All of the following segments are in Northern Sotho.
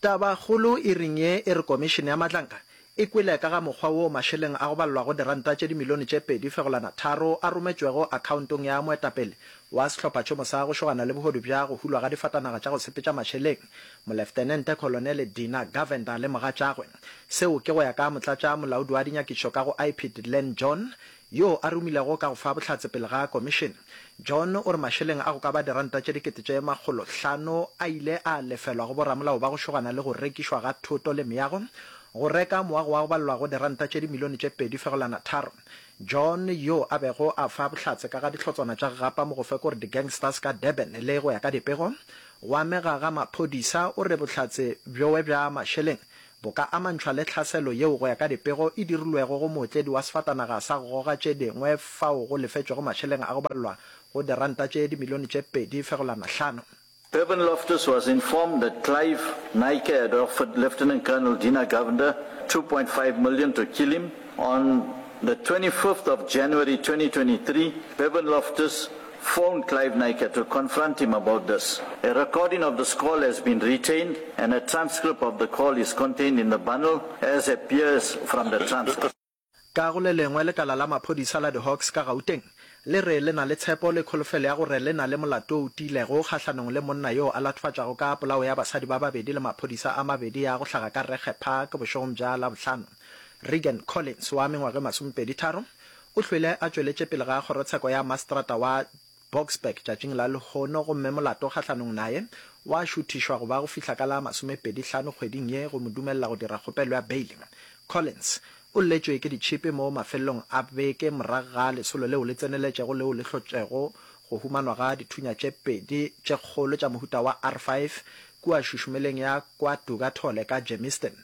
Tabakgolo e reng ye e re Komišene ya Matlanka e kwele ka ga mokgwa woo mašeleng a go balelwago diranta tše dimilione tše pedi fegolana tharo a rometšwego akhaontong ya moetapele wa sehlophatšhomo sa go šogana le bohodu bja go hulwa ga difatanaga tša go sepetša mašeleng Moleftenente Kholonele Dina Govender le mogatšagwe. Seo ke go ya ka Motlatša Molaodi wa Dinyakišo ka go IPID Len John yo a romilego ka go fa bohlatse pele ga komišene. John o re mašeleng a go ka ba diranta tše dikete tše makgolo hlano a ile a lefelwa go boramolao ba go šogana le go rekišwa ga thoto le meago go reka moago wa go balelwago diranta tše dimilione tše pedi fegolana tharo. John yo a bego a fa bohlatse ka ga dihlotswana tša gapa mo go fe kore di-gangsters ka Durban le go ya ka dipego go amega ga maphodisa o re bohlatse bjoe bja mašeleng bo ka amantšhwa le tlhaselo yeo go ya ka dipego e dirilwego go mootledi wa sefatanaga sa go goga tše dingwe fao go lefetšwego mašeleng a go balelwa go diranta tše dimilione tše pedi fegolwana hlano. Irvin Loftus was informed that Clive Naicker had offered Lieutenant Colonel Dina Govender two point five million to kill him. On the twenty fifth of January twenty twenty three, Irvin Loftus phoned Clive Naicker to confront him about this. A recording of this call has been retained and a transcript of the call is contained in the bundle as appears from the transcript. Ka go le lengwe, lekala la maphodisa la di-Hawks ka Gauteng le re le na le tshepo le kholofelo ya gore le na le molato o tiilego kgahlanong le monna yo a latofatšago ka polao ya basadi ba babedi le maphodisa a mabedi a go hlaga ka Regge Park bošegong bja Labohlano. Regan Collins wa mengwaga e masomepedi-tharo O hlwele a tšweletše pele ga kgorotsheko ya mastrata wa Boksburg tšatšing la lehono gomme molato kgahlanong naye wa šuthišwa go ba go fihla ka la masomepedi hlano kgweding ye go mo dumelela go dira kgopelo ya beile. Collins o lletšwe ke ditšhipi mo mafelelong a beke morago ga lesolo leo le tseneletšego leo le hlotšego go humanwa ga dithunya tše pedi tše kgolo tša mohuta wa R five kua šušumeleng ya kwa Dugatole ka Germiston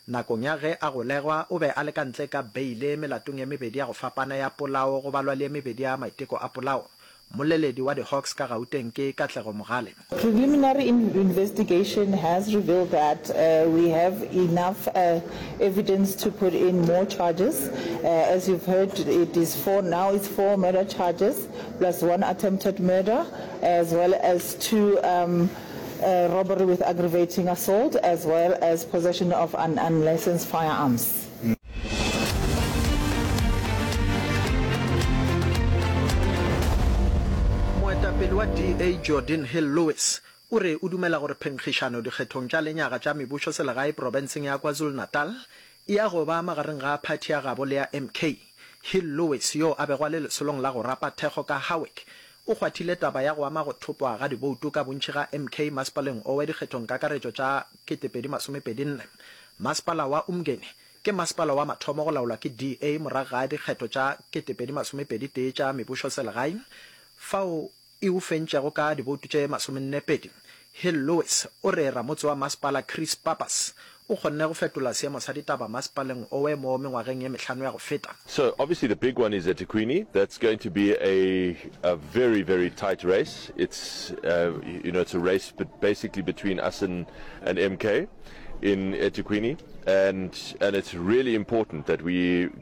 Nakong ya ge a golegwa, o be a le ka ntle ka beile melatong e mebedi ya go fapana ya polao go balwa le e mebedi ya maiteko a polao. Mmoleledi wa di-Hawks ka Gauteng ke Katlego Mogale. Preliminary investigation has revealed that we have enough evidence to put in more charges. As you've heard, it is four, now it's four murder charges plus one attempted murder as well as two robbery with aggravating assault as well as possession of an unlicensed firearms. Moetapele wa DA Jordan Hill Lewis o re o dumela gore phenkgišano dikgethong tša lenyaga tša mebusoselegae profenseng ya KwaZulu-Natal E ya go ba magareng ga phathi ya gabo le ya MK. Hill Lewis, yoo a bego a le lesolong la go rapa thekgo ka Howick, o kgwathile taba ya go ama go thopwa ga diboutu ka bontši ga MK masepaleng owe dikgethongkakaretšo tša 2024. Masepala wa Umgeni ke masepala wa mathomo go laolwa ke DA morago ga dikgetho tša 2021 tša mebušoselegae, fao e o fentšago ka diboutu tše masomenepedi. Hill Lewis o re ramotse wa masepala Chris Pappas o kgonne go fetola seemo sa ditaba masepaleng owe mo mengwageng e mehlano ya go feta. So obviously the big one is eThekwini, that's going to be a a very very tight race, it's uh you know it's a race but basically between us and and MK in eThekwini and and it's really important that we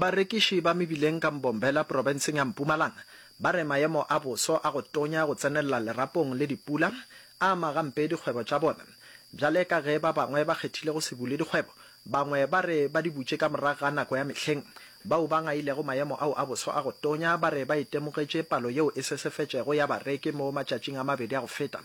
Barekiši ba mebileng ka Mbombela profenseng ya Mpumalanga ba re maemo a boso a go tonya go tsenelela lerapong le dipula a ama gampe dikgwebo tša bona. Bjale ka ge ba bangwe ba kgethile go se bule dikgwebo, bangwe ba re ba di butše ka morago ga nako ya mehleng. Bao ba ngailego maemo ao a boso a go tonya ba re ba itemogetše palo yeo e sesefetšego ya bareki mo matšatšing a mabedi a go feta.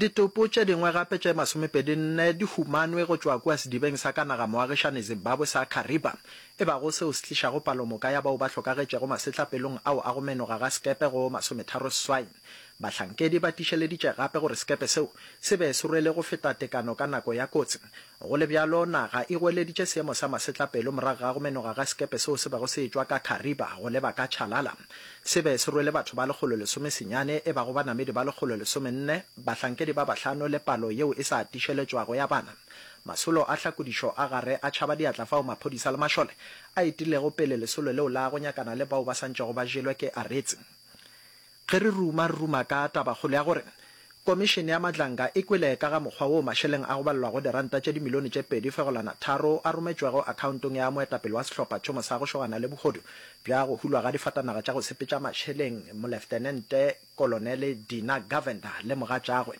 Ditopo tše dingwe gape tše masomepedi nne di humanwe go tšwa kua sedibeng sa ka naga-moagišani Zimbabwe sa Kariba, e bago seo se tlišago palomoka ya bao ba hlokagetšego masetlapelong ao a go menoga ga sekepe go masometharo seswai. Bahlankedi ba tišeleditše gape gore sekepe seo se be se rwele go feta tekano ka nako ya kotsi, Go le bjalo, naga e goeleditše seemo sa masetlapelo morago ga go menoga ga sekepe seo se bego se etšwa ka Kariba go leba ka Chalala. Se be se rwele batho ba lekgolo lesome senyane, e bago banamedi ba lekgolo lesome nne, bahlankedi ba bahlano le palo yeo e sa atišeletšwago ya bana. Masolo a hlakodišo a gare a tšhaba diatla fao maphodisa le mašole a etilego pele lesolo leo la go nyakana le bao ba sa ntšego ba jelwe ke Aretse. Ge re ruma, re ruma ka tabakgolo ya gore Komišene ya Madlanga e kwele ka ga mokgwa woo mašeleng a go balelwago diranta tše dimilione tše pedi fegolwana tharo a rometšwego akhaontong ya moetapele wa sehlopha tšhomo sa go šogana le bohodu bja go hulwa ga difatanaga tša go sepetša mašeleng Moleftenente Kolonele Dina Govender le mogatšagwe.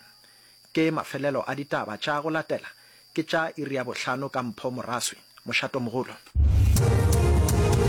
Ke mafelelo a ditaba tša go latela, ke tša iri ya bohlano ka Mpho Moraswi. Mošatomogolo.